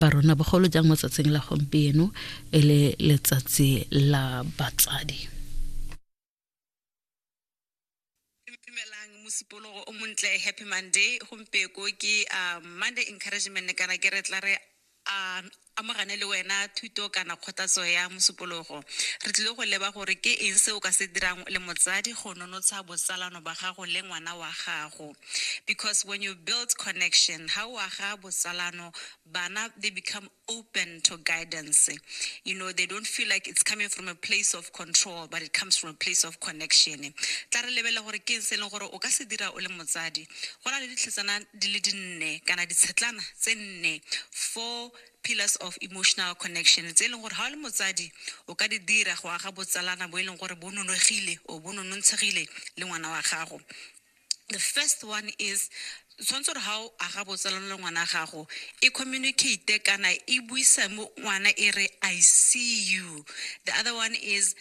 ba rona bogolo jang mo tsatsing la gompieno e le letsatsi la batsadi mosupologo o montle happy monday gompeko ke uh, monday encouragement kana ke re tla re a amogane le wena thuto kana kgothatso ya mosupologo re tlile go leba gore ke eng se o ka se dirang le motsadi go nonotsha botsalano ba gago le ngwana wa gago because when you build connection ha o aga botsalano bana they become open to guidance you know they don't feel like it's coming from a place of control but it comes from a place of connection tla re lebele gore ke se leng gore o ka se dira o le motsadi go na le ditlhetsana di le dinne kana ditshetlana tse nne four pillars of emotional connection tse e leng gore ga o le motsadi o ka di dira go aga botsalana bo e leng gore bo nonogile o bo nonontshegile le ngwana wa gago The first one is tshwanetse gore ga o aga botsalano le ngwana gago e communicate kana e buisa mo ngwana e re i see you the other one is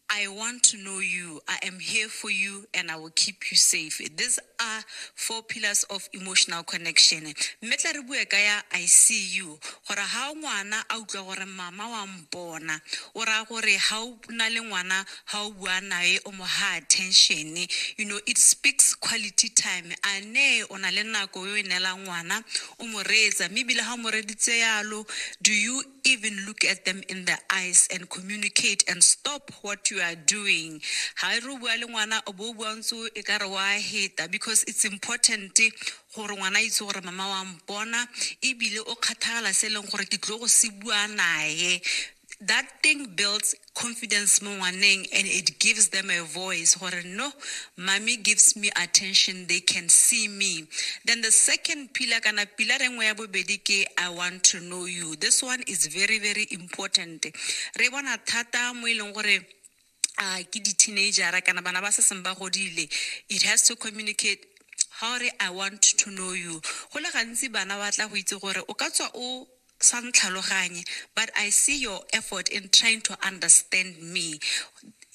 i want to know you i am here for you and i will keep you safe these are four pillars of emotional connection mme tla re bue ka ya i see you gore ga ngwana a utlwa gore mama wa mpona o raya gore ga o O na le ngwana ha o bua nae o mo ha attention you know it speaks quality time a ne o na le nako e o e neelang ngwana o mo reetsa mme ebile ha o mo reditse yalo do you even look at them in the eyes and communicate and stop what you are doing ha e re o bua le ngwana o bo o bua ntse e ka re wa heta because it's important gore ngwana a itse gore mama wa mpona ebile o kgathagala se e leng gore ke tlo go se bua nae that thing builds confidence mo ngwaneng and it gives them a voice gore no mommy gives me attention they can see me then the second pillar kana pillar engwe ya bobedi ke i want to know you this one is very very important re bona thata mo e leng gore uh, ke di-teenagera kana bana ba se seng ba godile it has to communicate ga re i want to know you go le gantsi bana ba tla go itse gore o ka tswa o sa ntlhaloganye but i see your effort in trying to understand me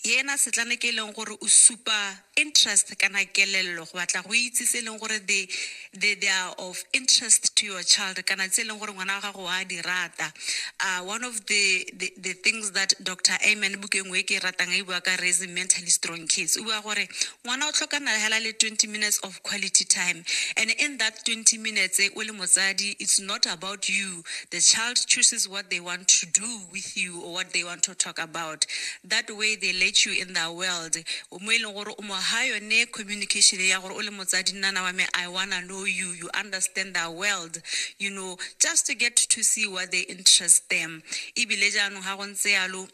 yena setlane ke e leng gore o supa interest kana kelello go batla go itse se e leng gore they, they, they are of interest to your child kana tse e leng gore ngwana wa gago wa di rata uh, one of the, the, the things that dr amen bukeng e ke e ratang e bua ka raising mentally strong kids o bua gore ngwana o tlhokana hela le 20 minutes of quality time and in that 20 minutes o le motsadi it's not about you the child chooses what they want to do with you or what they want to talk about that way they let you in their world mo e leng gore o mo ha yone communication ya gore o le motsadi nnana wa me i wanna know you you understand their world you know just to get to see what they interest them ebile jaanong ga go ntse yalo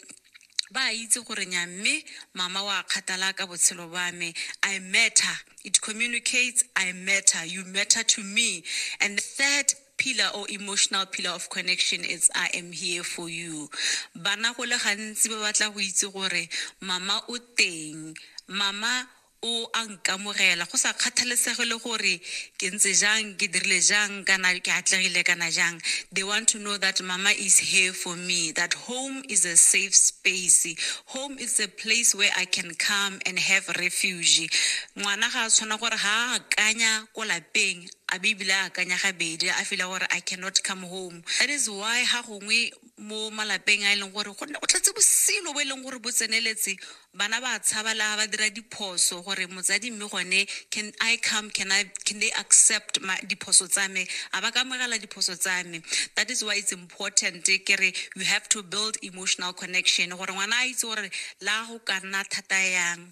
ba itse gore nya mme mama wa kgathala ka botshelo ba me i matter it communicates i matter you matter to me and the third Pillar or emotional pillar of connection it's I am here for you. Bana go le gantsi ba batla go itse gore mama o teng, mama o a nkamogela go sa kgathalesege le gore ke ntse jang, ke dirile jang kana ke atlegile kana jang. They want to know that mama is here for me, that home is a safe space, home is a place where I can come and have refuge. Ngwana ga a tshwana gore ha a akanya ko lapeng A Bibele a akanya gabedi, a fila gore I cannot come home. That is why ga gongwe mo malapeng a e leng gore go nne go tletse bosilo bo e leng gore bo tseneletse, bana ba a tshaba le ga ba dira diphoso gore motsadi mme gone can I come, can I, can they accept my, diphoso tsa me, a ba ka amogela diphoso tsa me. That is why it's important ke re you have to build emotional connection gore ngwana a itse gore le ga go ka nna thata yang.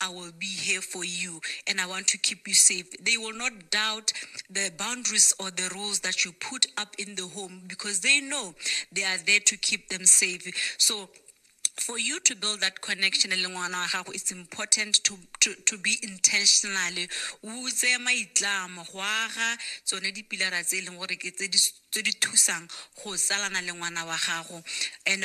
I will be here for you and I want to keep you safe. They will not doubt the boundaries or the rules that you put up in the home because they know they are there to keep them safe. So for you to build that connection it's important to, to, to be intentionally o tseye maitlamo go aga tsone dipilara tse e leng gore ke tse di thusang go tsalana le ngwana wa gago and